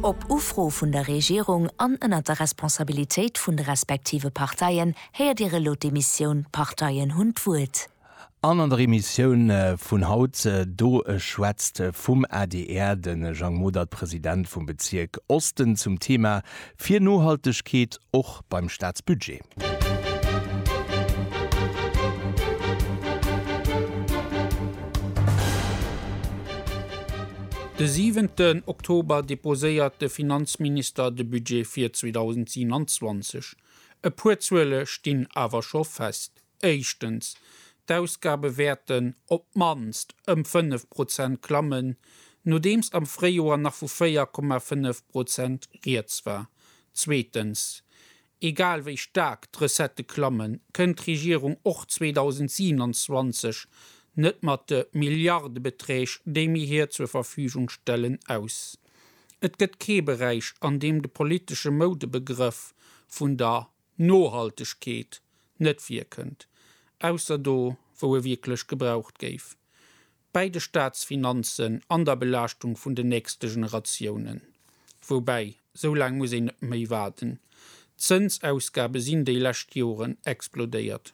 Op Ufro vun der Regierung an ënnert der Responsabilitéit vun de respektive Parteien héiert Dir elo d'Emissioun D'Parteien hunn d'Wuert. An an der Emissioun vun haut, do schwätzt vum adr de Jang Modert, President vum Bezierk Osten, zum Thema fir Nohaltegkeet och beim Staatsbudget. De siwenten Oktober deposéiert de Finanzminister de Budget fir 2027. E puer Zuele stinn awer scho fest. Éischtens, d'Ausgabe wäerten op d'mannst ëm 5 Prozent klammen, nodeems am Fréijoer nach vu 4,5 Prozent rieds war. Zweetens, egal wéi staark d'Recettë klammen, kënnt d'Regierung och 2027 net mat de Milliardebeträg, déi mir hir zur Verfügung stellen, aus. Et gëtt kee Beräich, an deem de politesche Moudebegrëff vun der Nohaltegkeet net wierkend, ausser do wou e wierklech gebraucht géif, bäi de Staatsfinanzen an der Belaaschtung vun den nächste Generatiounen. Woubäi, sou laang muss een net méi waarden, d'Zënsausgabe sinn déi lescht Joren explodéiert.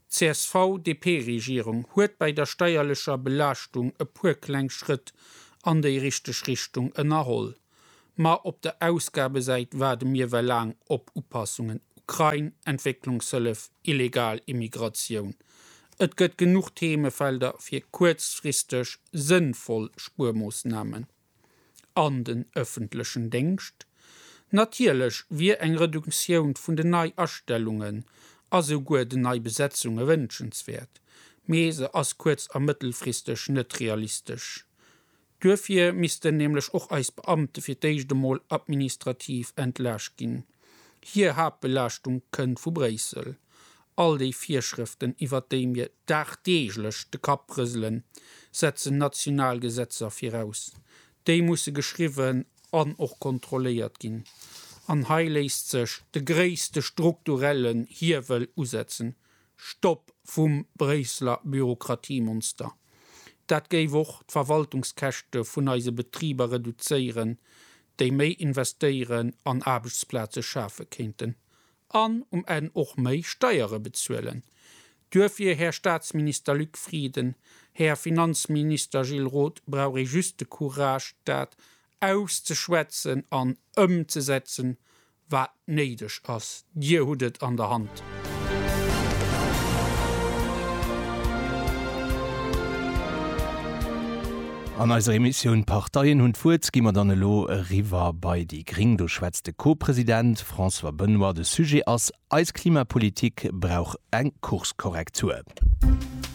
D'CSV-DP-Regierung huet bäi der steierlecher Belaaschtung e puer kleng Schrëtt an déi richteg Richtung ënnerholl, ma op der Ausgabesäit waarde mir well laang op Upassungen, Ukrain, Entwécklungshëllef, illegal Immigratioun. Et gëtt genuch Themefelder fir kuerzfristeg sënnvoll Spuermoossnamen. an den ëffentlechen Déngscht. Natierlech wier eng Reduktioun vun den Neiastellungen a souguer den Neibesetzunge wënschenswäert, mee se ass kuerz a mëttelfristeg net realistesch. Duerfir missten nämlech och eis Beamte fir d'éischt emol administrativ entlaascht ginn. Hir Haaptbelaaschtung kënnt vu Bréissel All déi Virschrëften, iwwert déi mir dagdeeglech de Kapp rëselen, setzen national Gesetzer viraus. Déi musse geschriwwen an och kontrolléiert ginn. An hei léisst sech de gréisste strukturellen Hiewel usetzen, Stopp vum Bréisseler Bürokratiemonster! Dat géif och d'Verwaltungskäschte vun eise Betriber reduzéieren, déi méi investéieren an Aarbechtsplaze schafe kéinten. An um Enn och méi Steiere bezuelen. Duerfir, Här Staatsminister Luc Frieden, Här Finanzminister Gilles Roth, brauch ee just de Courage, dat auszeschwätzen an ëmzesetzen, wat néideg ass. Dir hutt et an der Hand. An eiser Emissioun Parteien hunn d'Wuert gi mer dann elo eriwwer bei déi gréng. Do schwätzt de Co-President François Benoy, De Sujet ass, Eis Klimapolitik brauch eng Kurskorrektur.